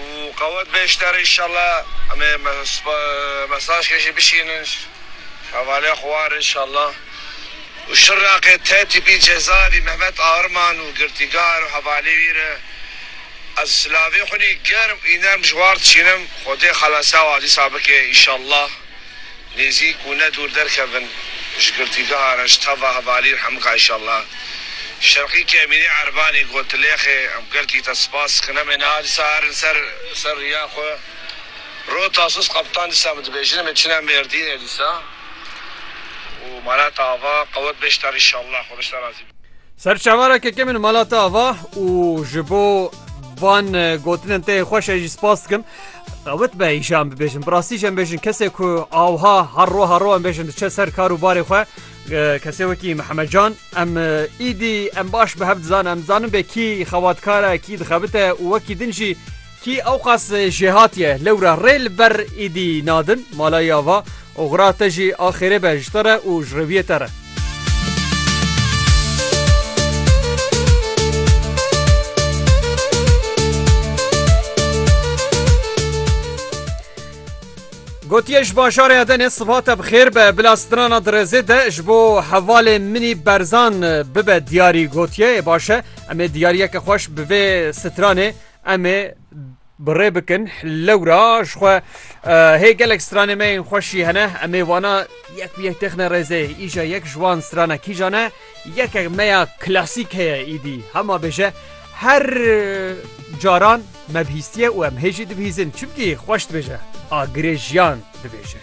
û qewet be ji te re înşallah em ê mesajkê jî bişînin ji hevalê xwe re înşallah û şir raqê te tîpî cezavî Mehmet Arman û girtîgar û hevalê wî re ez silavê xwinî germ û înerm ji war dişînim xwedê xelase wan dîsa bike înşallah. Nêzîk û ne dûr derkevin ji girtîgeha Reştava Hevalîr Hemika Îşallah. Şerqî ke Emînê Erbanî got tu lêxê em girtî te spas dikin. Em ê niha disa herin ser ser riya xwe. Rû Tasus Kaptan disa min dibêjin em ê çine Mêrdînê disa û mala te ava qewet bê ji te re Îşallah. Xweda ji te razî be. Ser çavara keke min mala te ava û ji bo van gotinin te yên xweş e jî spas dikim. Qewit be îşa em bibêjin. Bi rastî jî em bêjin kesê ku awha her ro her ro em bêjin diçe ser kar û barê xwe kesê wekî Mihemed Can em îdî em baş bi hev dizan em zanin bê kî xewatkare kî dixebite û wekî din jî kî ewqas jêhatiye lewra rê li ber îdî nadin malayê ava Oxira te jî a xêrê be ji te re û ji rêwiyê te re. Gotiye ji bajarê Edenê siva te bi xêr be bila strana dirêzê de ji bo hevalê minî berzan bibe diyarî gotiye ê baş e em ê diyariyeke xweş bi vê stranê em ê Bi rê bikin lewra ji xwe hê gelek stranê me yên xweş jî hene em ê wana yek bi yek têxine rêzê îja yek ji wan strana kîjan e yekek me ya klasîk heye îdî hema bêje her caran me bihîstiye û em hê jî dibihîzin çimkî xweş dibêje agirê jiyan dibêje.